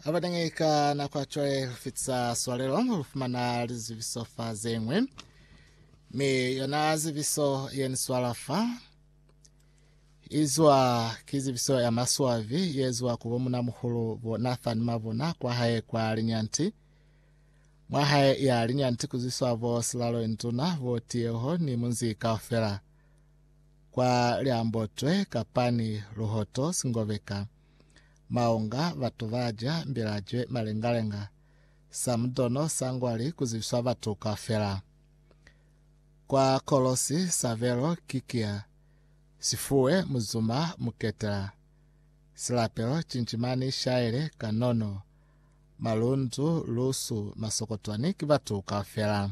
Abateñi ka nako ya cwale ho fitisa swalelo ho fumana lizibiso fa zengwe. Mi yona zibiso ye ni swala fa izwa ki zibiso ya maswavi ye zwa ku bomuna muhulu bo Nathan Mabona kwa hae kwa Linyanti. Mwa hae ya Linyanti kuziswa bo Silalo Induna bo Tiyeho ni munzi kaufela. kwa liambotwe kapa ni luhoto singobeka, maunga, batu ba ja mbilajwe, malengalenga, samudono, sangwali, ku zibiswa batu kaufela. Kwa Kolosi, sabelo ki kiya, sifuwe, muzuma, muketela, silapelo, cincimani, shaile, kanono, malundu, lusu, masokotwani, ki batu kaufela.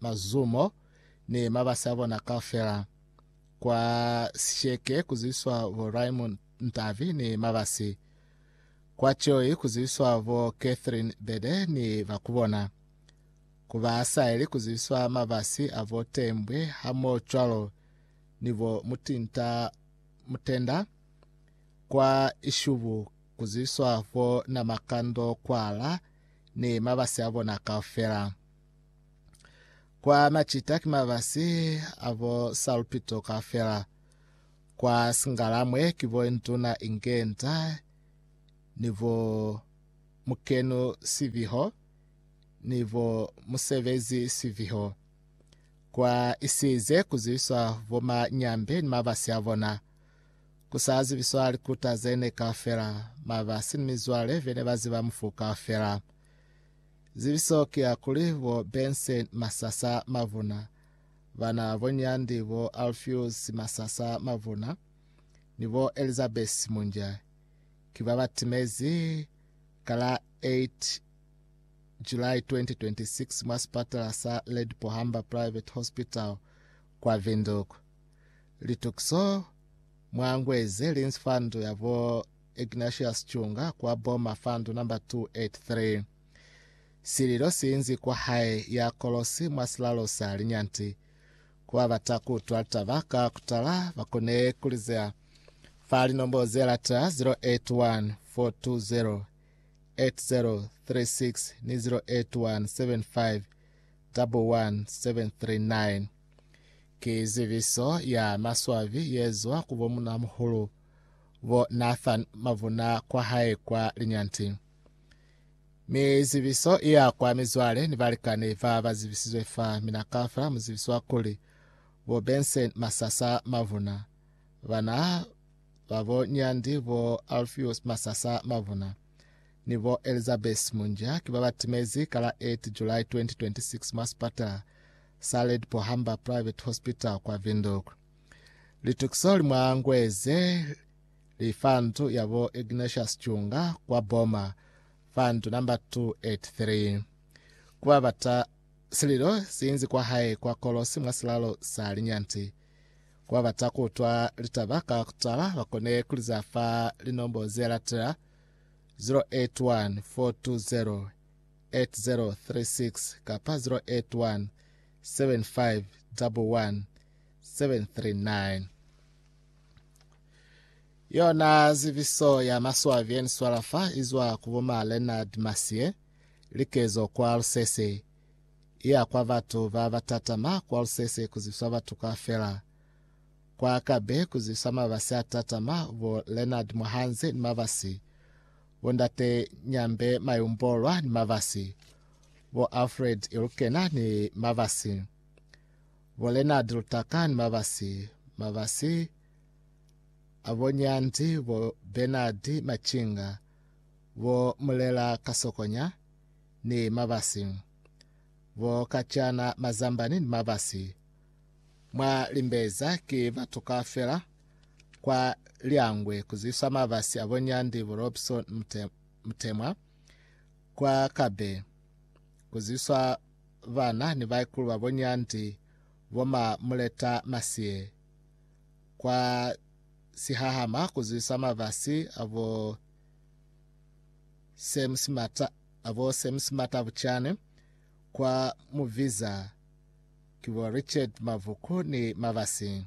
mazumo ni mabasi a bona kaufela kwa Sisheke ku zibiswa bo Raymond Ntavi ni mabasi, kwa Choi ku zibiswa bo Catherine Bede ni ba ku bona, ku ba Asaeli ku zibiswa mabasi a bo Tembwe hamoho cwalo ni bo Mutinta Mutenda, kwa Ishubu ku zibiswa bo Namakando Kwala ni mabasi a bona kaufela. Kwa Macita ki mabasi a bo Salupito kaufela. Kwa Singalamwe ki bo Induna Inge Nta ni bo Mukenu Siviho ni bo Musebezi Siviho. Kwa Isize ku ziviswa bo Manyambe ni mabasi a bona. Ku sa zibiswa likuta ze ne kaufela, mabasi ni mizwale be ne ba ziba mufu kaufela. Zibiso ki ya kuli bo Benson Masasa Mavuna, bana bo Nyandi bo Alpheus Masasa Mavuna ni bo Elizabeth Munja ki ba ba timezi ka la 8 July 2026 mwa sipatala sa Lady Pohamba Private Hospital kwa Windhoek. Litukiso mwa ngwe ze li nzfandu ya bo Ignatius Chunga kwa Boma fandu number 283. Sililo si inzi kwa hae ya kolosi mwa silalo sa linyanti. Ku ba bata ku utwa litaba ka kutala ba kone ku li zea fa linombo ze latela 081 420 8036 ni 081 75 11739. Ki zibiso ya maswabi yezwa ku bo munamuhulu bo Nathan mavuna kwa hae kwa linyanti. Mi zibiso iya kwa mizwale ni balikani ba ba zibisizwe fa mina kafela mu zibiswa kuli bo Benson Masasa mavuna, bana ba bo Nyandi bo Alpheus Masasa mavuna ni bo Elizabeth Munja ki ba ba timezi ka la 8 July 2026 mwa sipatala Saled Pohamba Private Hospital kwa Windhoek. Litukiso li mwa ngwe ze li fa ndu ya bo Ignatius Chunga kwa Boma fa ndu namba 283. Ku ba bata sililo si inzi kwa hae kwa Kolosi mwa silalo sa linyanti. Ku ba bata ku utwa litaba ka ku tala ba kone ku li za fa linombo ze latela, 081 420 8036 kapa 081 7511 739. Yona zibiso ya maswabi eni swala fa izwa ku bo ma Leonard Masie likezo kwa Lusese iya kwa batu ba batatama kwa Lusese kuzibiswa batu ka fela Kwa ka be ku zwisa mabasi a tatama, bo Leonard Muhanzi ni mabasi, bo Ndate Nyambe Mayumbolwa ni mabasi, bo Alfred Ilukena ni mabasi, bo Leonard Lutaka ni mabasi, mabasi a bo Nyandi, bo Bernard Machinga, bo Mulela Kasokonya ni mabasi, bo Kachana Mazambani ni mabasi, Mwa limbeza ki batu kaufela kwa Liangwe kuzwiswa mabasi abo Nyandi Burobson Mutemwa, kwa Kabe kuzwiswa bana ni baikulu babo Nyandi bo ma Muleta Masiye, kwa Sihahama kuzwiswa mabasi abo Sam Simata abo Sam Simata Buchane, kwa Muviza ki bo Richard Mavhuku ni Mabasi.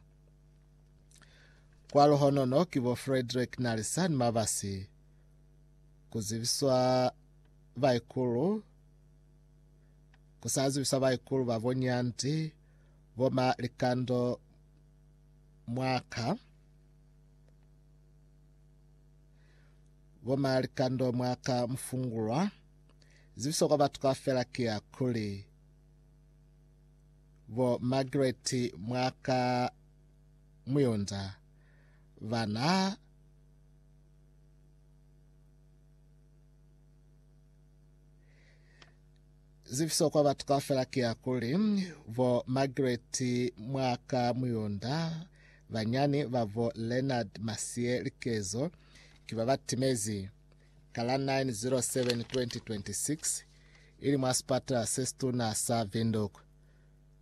Kwa Luhonono ki bo Frederick Nalisa ni Mabasi. Ku zibiswa baikulu ku sa zibiswa baikulu ba bo Nyanti bo ma Likando Mwaka bo ma Likando Mwaka Mufungulwa. Zibiso kwa batu kaufela ki ya kuli Bo Margaret mwa ka Muyonza ba na zifiso kwa batu kaufela ki ya kuli bo Margaret mwa ka Muyonza banyani ba bo Leonard Masie Likezo ki ba ba timezi ka la 9 07 2026 ili mwa sipatala se situna sa Windhoek.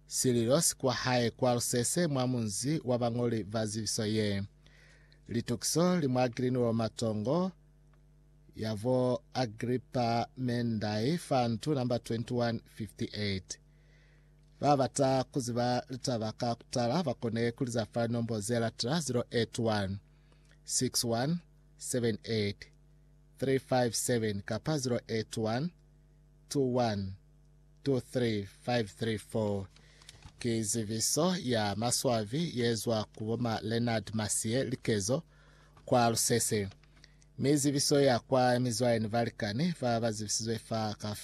Sililo si kwa hae kwa Lusese mwa munzi wa bañoli ba zibiso ye. Litukiso li mwa Greenwell Matongo ya bo Agrippa Mendai fa ntu namba 2158. Ba bata ku ziba litaba ka kutala ba kone ku liza fa linombo ze latela 081 61 357 kapa 081 21 23534 ki ziviso ya maswabi yezwa ku bo ma Leonard Masiye Likezo kwa Lusese, mi ziviso ya kwa mizwayeni balikani ba bazibisizwe fa ka